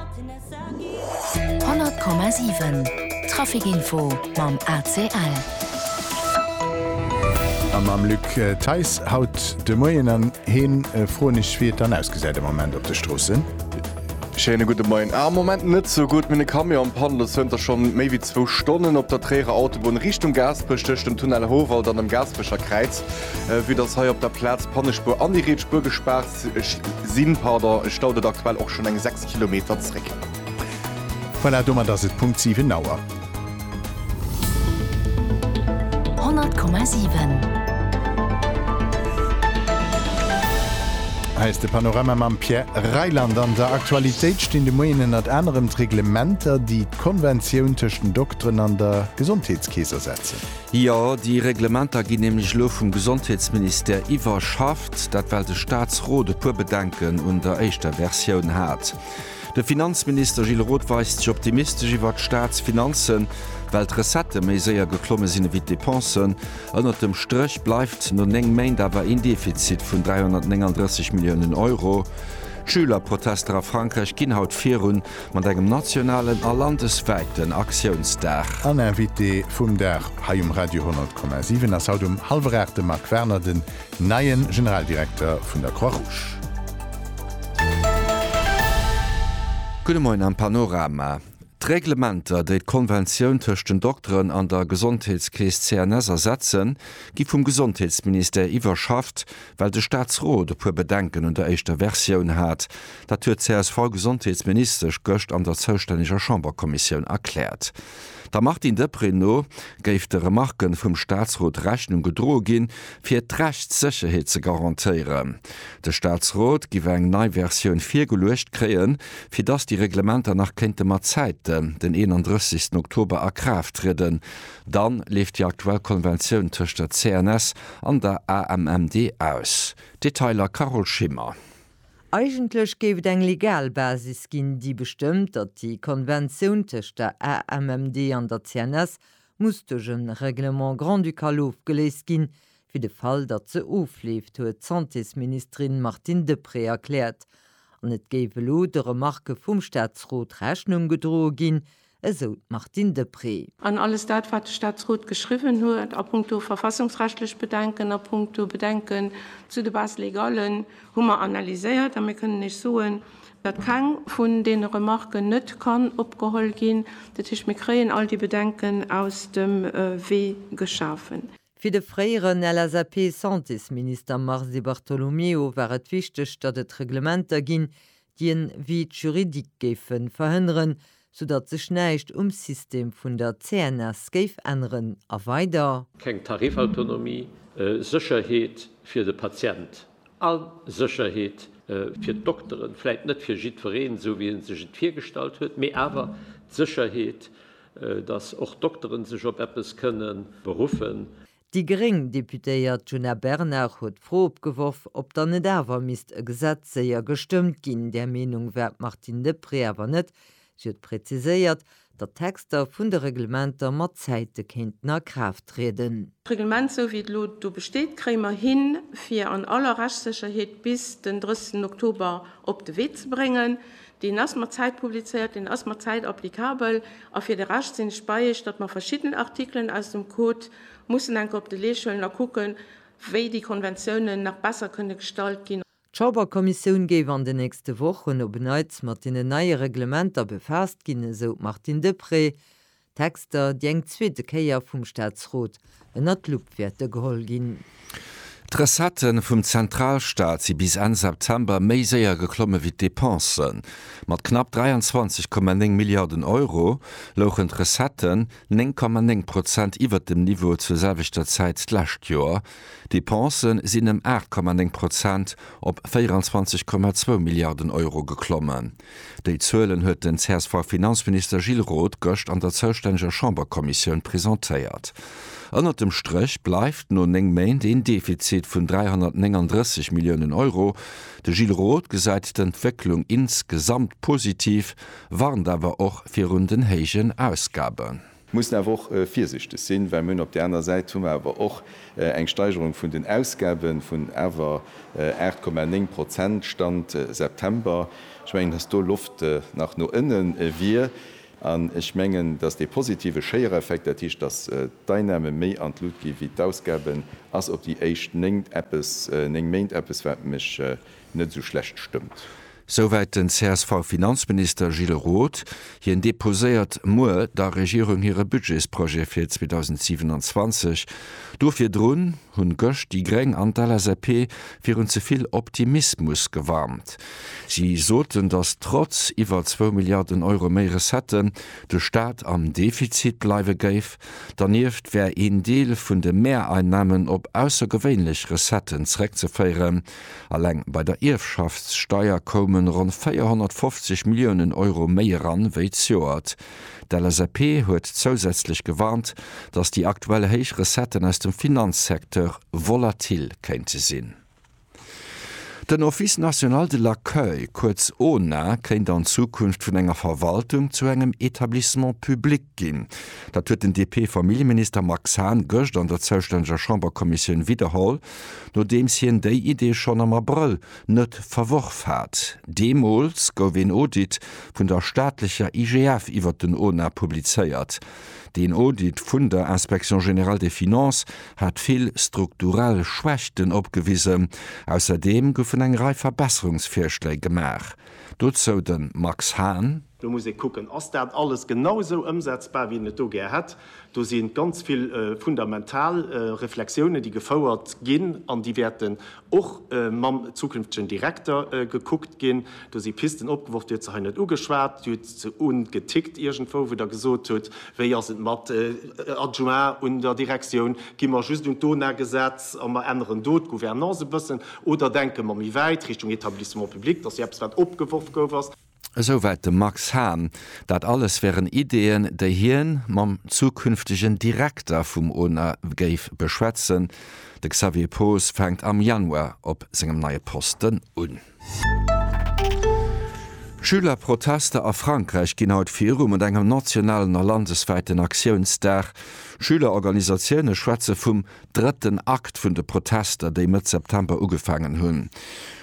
100,7 Trafic-Info mam ACL. A mam Luc Theis haut de Moien. An heen froen ech, wéi et dann ausgesäit am Moment op de Stroossen. Schéine gudde Moien. Am Moment net sou gutt. Minn e Camion am Panne lo zënter scho méi wéi zwou Stonnen op der Tréierer Autobunn Richtung Gaasperech tëscht dem Tunnel Howald an dem Gaasperecher Kräiz. Vue dass hei op der Plaz d'Pannespuer an déi riets Spuer gespaart. Ech sinn, pardon, ech stauden aktuell och schon eng 6 Kilometer zréck. Voilà, domat ass et Punkt 7 Auer. 100,7. Hei ass de Panorama mam Pierre Reyland. An der Aktualitéit stinn de Moien ënnert anerem d'Reglementer, déi d'Konventioun tëscht den Dokteren an der Gesondheetskeess ersetzen. Jo, déi Reglementer ginn nämlech elo vum Gesondheetsministère iwwerschafft, dat well de Staatsrot e puer Bedenken un der éischter Versioun hat. De Finanzminister Gilles Roth weist sech optimistesch iwwert d'Staatsfinanzen, well d'Recettë méi séier geklomme sinn ewéi d'Depensen. Ënnert dem Stréch bleift no 9 Méint awer een Defizit vun 339 Milliounen Euro. D'Schülerprotester a Frankräich ginn haut virun. Mat engem nationalen a landeswäiten Aktiounsdag. En Invité vum Dag hei um Radio 10,7 ass haut um hallwer 8 de Marc Werner, den neie Generaldirekter vun der Croix Rouge. Gudde Moien am Panorama. D'Reglementer, déi d'Konventioun tëscht den Dokteren an der Gesondheetskeess CNS ersetzen, gi vum Gesondheetsministère iwwerschafft, well de Staatsrot e puer Bedenken un der éischter Versioun hat. Dat huet d'CSV-Gesondheetsministesch gëscht an der zoustänneger Chamberkommissioun erkläert. Der Martine Deprez no géif de Remarke vum Staatsrot Rechnung gedroe ginn, fir d'Rechtssécherheet ze garantéieren. De Staatsrot giff eng nei Versioun virgeluecht kréien, fir datt déi Reglementer nach kéinte mat Zäiten den 31 Oktober a Kraaft trieden. Dann leeft déi aktuell Konventioun tëscht der CNS an der AMMD aus. Detailer Carole Schimmer. Eigentlech géif et eng legal Basis ginn, déi bestëmmt, datt déi Konventioun tëscht der AMMD an der CNS muss duerch e Règlement grand-ducal ofgeléist ginn, fir de Fall, datt se ofleeft, huet d'Santésministerin Martine Deprez erkläert. An et géif elo de Remarke vum Staatsrot Rechnung gedroe ginn, esou d'Martine Deprez. An alles dat, wat de Staatsrot geschriwwen huet a punkto verfassungsrechtlech Bedenken, a punkto Bedenken zu de Bases légallen, hu mer analyséiert. A mir kënnen Iech soen, datt keng vun deene Remarken net kann opgeholl ginn. Dat heescht, mir kréien all déi Bedenken aus dem Wee geschafen. Fir de fréieren LSAP-Santésminister Mars Di Bartolomeo war et wichteg, datt et Reglementer ginn, déi en Vide juridique géife verhënneren, soudatt sech näischt um System vun der CNS géif änneren. A weider. Keng Tarifautonomie, Sécherheet fir de Patient a Sécherheet fir d'Dokteren, vläit net fir jiddwereen, esou wéi ee sech et virgestallt huet, mee awer d'Sécherheet, datt och Dokteren sech op eppes kënnen beruffen. Déi gréng Deputéiert Djuna Bernard huet d'Fro opgeworf, ob dann net awer misst e Gesetz séier gestëmmt ginn. Där Meenung war d'Martine Deprez awer net. Si huet präziséiert, datt d'Texter vun de Reglementer mat Zäite kéinten a Kraaft trieden. D'Reglement esou wéi et elo do besteet, kréie mer hin fir an aller Rechtssécherheet bis den 30 Oktober op de Wee ze bréngen. Deen ass mat Zäit publizéiert, deen ass mat Zäit applicabel. A fir de Rescht sinn ech bei Iech, datt mer verschidden Artikelen aus dem Code mussen enke op de Leescht huelen a kucken, wéi déi Konventiounen nach besser kënne gestalt ginn. D'Chamberkommissioun géif an den nächste Wochen op en Neits mat deenen neie Reglementer befaasst ginn, esou d'Martine Deprez. D'Texter, déi eng zweete Kéier vum Staatsrot ënner d'Lupp wäerte geholl ginn. D'Recettë vum Zentralstaat si bis Enn September méi séier geklomme wéi d'Depensen. Mat knapp 23,9 Milliarden Euro louchen d'Recetten 9,9 Prozent iwwert dem Niveau zur selwechter Zäit d'lescht Joer. D'Depense sinn ëm 8,9 Prozent op 24,2 Milliarden Euro geklommen. Déi Zuelen huet den CSV-Finanzminister Gilles Roth gëscht an der zoustänneger Chamberkommissioun presentéiert. Ënnert dem Stréch bleift no néng Méint een Defizit vun 339 Milliounen Euro. De Gilles Roth gesäit d'Entwécklung insgesamt positiv, warnt awer och virun den héijen Ausgaben. Mussen awer och virsichteg sinn, well mir hunn op där anerer Säit hu mer awer och eng Steigerung vun den Ausgaben vun awer 8,9 Prozent, Stand September. Ech mengen, dass do Loft nach no ënnen wier. An ech mengen, dass dee positive Schéiereffekt, dat heescht, dass d'Einnahmen méi an d'Lut gi wéi d'Ausgaben, ass op déi éischt néng eppes, néng Méint eppes, wat mech, net esou schlecht stëmmt. Souwäit den CSV-Finanzminister Gilles Roth. Hien deposéiert muer der Regierung hire Budgetsprojet fir 2027. Do virdrun hunn gëscht déi Gréng an d'LSAP virun ze vill Optimismus gewarnt. Si soten, datt trotz iwwer zwou Milliarden Euro méi Recetten, de Staat am Defizit bleiwe géif. Dernieft wär een Deel vun de Mehreinnahmen op aussergewéinlech Recetten zréckzeféieren. Alleng bei der Ierfschaftssteier koume ronn 450 Milliounen Euro méi eran wéi d'Joert. D'LSAP huet zousätzlech gewarnt, datt déi aktuell héich Recetten aus dem Finanzsecteur volatil kéinte sinn. Den Office national de l'accueil, kuerz ONA, kéint an Zukunft vun enger Verwaltung zu engem Etablissement public ginn. Dat huet den DP-Familljeminister Max Hahn gëscht an der zoustänneger Chamberkommissioun widderholl. Nodeems hien déi Idee schonn am Abrëll net verworf hat. Deemools gouf een Audit vun der staatlecher IGF iwwert den ONA publizéiert. Deen Audit vun der Inspection générale des finances hat vill strukturell Schwächten opgewisen. Ausserdeem goufen eng Rei Verbesserungsvirschléi gemaach. Dozou de Max Hahn. Do muss ee kucken, Ass dat alles genau esou ëmsetzbar, wéi een et do gär hätt? Do si ganz vill fundamental Reflexiounen, déi gefouert ginn an déi wäerten och mam zukünftegen Direkter gekuckt ginn. Do si Pisten opgeworf, Dir hutt se hei net ugeschwat, Dir hutt se ungetickt iergendwou, wou Der gesot hutt, wéi ass et mat Adjoint un der Direktioun, gi mer just un d'ONA-Gesetz a mer änneren do d'Gouvernance e bëssen oder denke mer méi wäit Richtung Etablissement public? Dat ass jo eppes, wat opgeworf gouf. Esouwäit de Max Hahn. Dat alles wären Ideeën, déi hien mam zukünftegen Direkter vum Ona géif beschwätzen. De Xavier Poos fänkt am Januar op sengem neie Posten un. Schülerprotester a Frankräich ginn haut viru mat engem nationalen a landeswäiten Aktiounsdag. Schülerorganisatioune schwätze vum Drëtten Akt vun de Protester, déi Mëtt September ugefaangen hunn.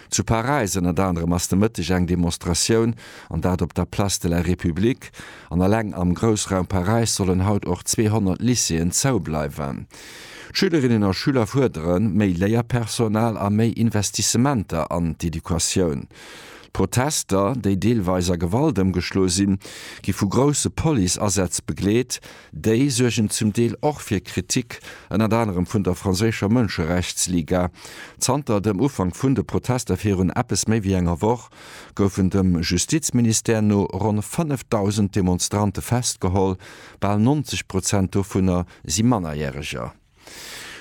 Zu Paräis ënnert anerem ass de Mëtteg eng Demonstratioun, an dat op der Place de la République. An eleng am Groussraum Paräis sollen haut och 200 Lycéeën zou bleiwen. D'Schülerinnen a Schüler fuerderen méi Léierpersonal a méi Investissementer an d'Educatioun. D'Protester, déi deelweis a Gewalt ëmgeschloe sinn, gi vu grousse Police-Asätz begleet, Déi suergen zum Deel och fir Kritik, ënnert anerem vun der franséischer Mënscherechtsliga. Zanter dem Ufank vun de Protester virun eppes méi wéi enger Woch goufen dem Justizministère no ronn 5.000 Demonstrante festgeholl, bal 90 Prozent dovunner si Mannerjäreger.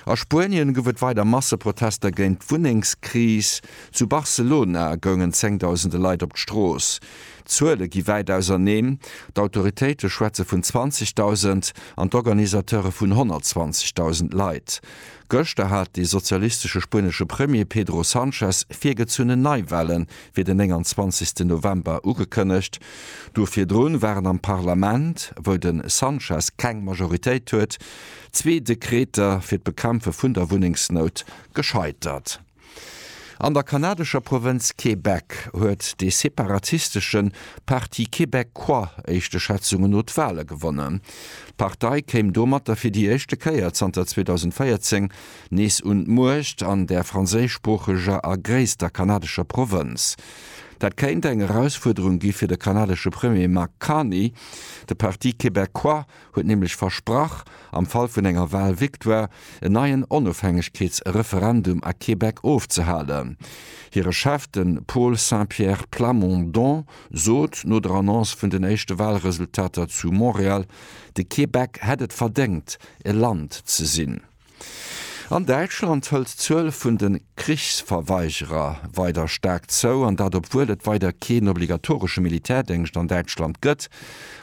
A Spuenien gouf et weider Masseprotester géint d'Wunnengskris. Zu Barcelona goungen zéngdausende Leit op d'Strooss. D'Zuele gi wäit auserneen, d'Autoritéite schwätze vun 20.000 an d'Organisateure vun 120.000 Leit. Gëschter hat de sozialistesche spuenesche Premier Pedro Sanchez virgezunnen Neiwahle fir den 29. November ugekënnegt. Duer virdrun waren am Parlament, wou de Sanchez keng Majoritéit huet, Zwee Dekreter fir d'Bekämpfe vun der Wunnengsnout gescheitert. An der kanadescher Provënz Québec huet dee separatistesche Parti Québecquoi éischte Schätzungen no d'Wale gewonnen. D'Partei kéim domatter fir déi éischte Kéier zanter 2014 nees un d'Muecht an där franséischsproocheger a gréisster kanadescher Provënz. Dat kéint eng Erausfuerderung gi fir de kanadesche Premier Mark Carney. De Parti Québecquoi huet nämlech versprach, am Fall vun enger Wahlvictoire en neien Onofhängegkeetsreferendum a Québec ofzehalen. Hire Chef, de Paul Saint-Pierre Plamondon, sot no der Annonce vun den éischte Wahlresultater zu Montréal, de Québec hätt et verdéngt, e Land ze sinn. An Däitschland hëlt d'Zuel vun de Krichsverweigerer weider staark zou, an dat obwuel et weider keen obligatoresche Militärdéngscht an Däitschland gëtt.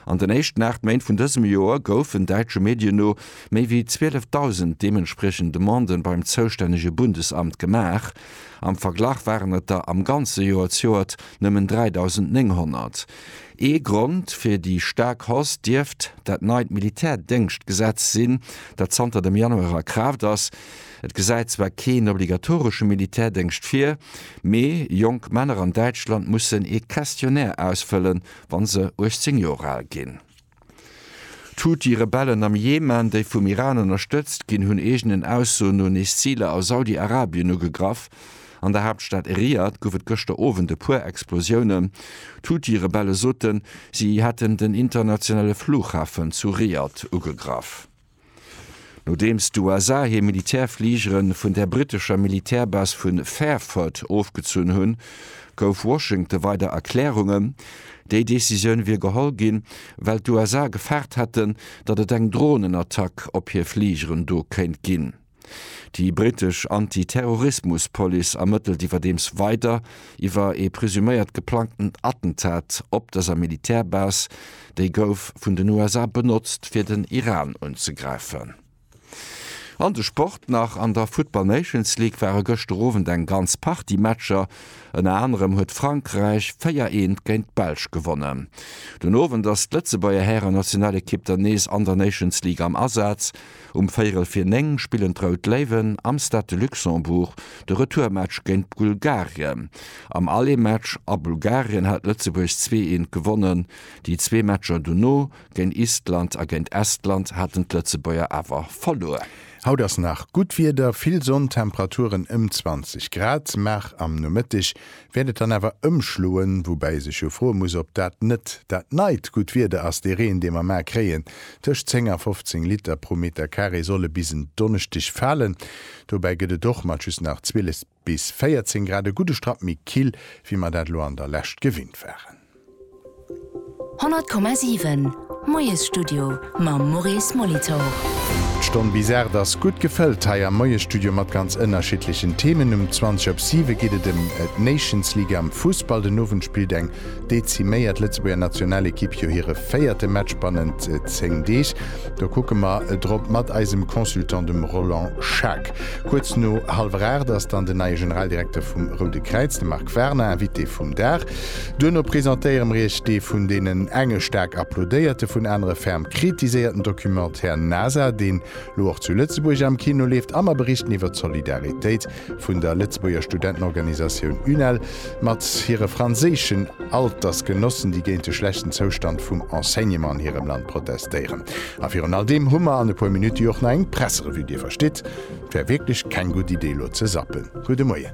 An den éischten 8 Méint vun dësem Joer goufen, däitsche Medien no, méi wéi 12.000 deementspriechend Demandë beim zoustännege Bundesamt gemaach. Am Verglach waren et der am ganze Joer zjoert nëmmen 3.900. Ee Grond fir déi staark Hausse dierft dat neit Militärdéngschtgesetz sinn, dat zanter dem Januar a Kraaft ass. Et gesäit zwar keen obligatoresche Militärdéngscht vir, mee jonk Männer an Däitschland mussen ee Questionnaire ausfëllen, wa se 18 Joer al ginn. D'Huthi-Rebellen am Jemen, déi vum Iran ënnerstëtzt ginn, hunn eegenen Aussoen no nees Ziler a Saudi-Arabien ugegraff. An der Haaptstad Riad gouf et gëschter Owend e puer Explosiounen. D'Huthi-Rebelle soten, si hätten den internationale Flughafen zu Riad ugegraff. Nodeems d'USA hir Militärfligere vun der brittescher Militärbase vu Fairford ofgezunn hunn, gouf Washington weider Erklärungen, déi Decisioun wier geholl ginn, well d'USA gefaart hätten, datt et eng Dronenattack op hir Fligeren do kéint ginn. Déi brittesch Anti-Terrorismus-Police ermëttelt iwwerdeems weider iwwer ee presuméiert geplangten Attentat op dëser Militärbase, déi gouf vun den USA benotzt fir den Iran unzegräifen. An de Sport nach, An der Football Nations League ware gëschter Owend eng ganz Partie Matcher, ënner anerem huet Frankräich 4 eent géint d'Belsch gewonnen. Den Owend ass d'Lëtzebuerger Hären-Nationalekipp dann nees an der Nations League am Asaz, Um Véirel fir 9 spillen d'Rout Léiwen am Stade de Luxembourg de Retourmatch géint Bulgarien. Am Allemaatch a Bulgarien hat Lëtzebuerg zwee eent gewonnen. Déi zwee Matcher dono, géint Island a géint Estland, haten d'Lëtzebuerger awer verluer. Haut ass nach gutt Wieder, vill Sonn, Temperaturen ëm 20 Grad, maach am Nomëtteg wäert et dann awer ëmschloen, woubäi ee sech jo froe muss, ob dat net dat neit gutt Wieder ass, dee Reen, dee mer mar kréien, tëscht 10 a 15 Liter pro Meter Carré solle bis en Donneschdeg falen. Dobäi gëtt et och mat just nach 12 bis 14 Grad e gudde Strapp méi kill, wéi mer dat elo an der Lescht gewinnt waren. 100,7 Moiesstudio mam Maurice Molitor. D'Stonn bis 8 ass gutt gefëllt hei am Moiesstudio mat ganz ënnerschiddlechen Themen. Um 20 op 7 geet et ëm d'Nations League am Fussball. Den Owend spillt eng deziméiert Lëtzebuerger Nationalekipp jo hire véierte Match bannent 10 Deeg. Do kucke mer drop mat eisem Consultant, dem Roland Schaack. Kuerz no hallwer 8 ass dann den neie Generaldirekter vum Roude Kräiz, de Marc Warner, Invité vum Dag. Duerno presentéiere mir iech dee vun deenen enge staark applaudéierte, vun anere ferm kritiséierten Documentaire NASA, deen lo och zu Lëtzebuerg am Kino leeft, a mer berichten iwwer d'Solidaritéit vun der Lëtzebuerger Studentenorganisatioun UNEL mat hire franséischen Altersgenossen, déi géint de schlechten Zoustand vum Enseignement an hirem Land protestéieren. A virun all deem hu mer an e puer Minutte jo och nach eng Presserevue. Dir verstitt, et wär wierklech keng gutt Idee elo ze zappen. Gudde Moien.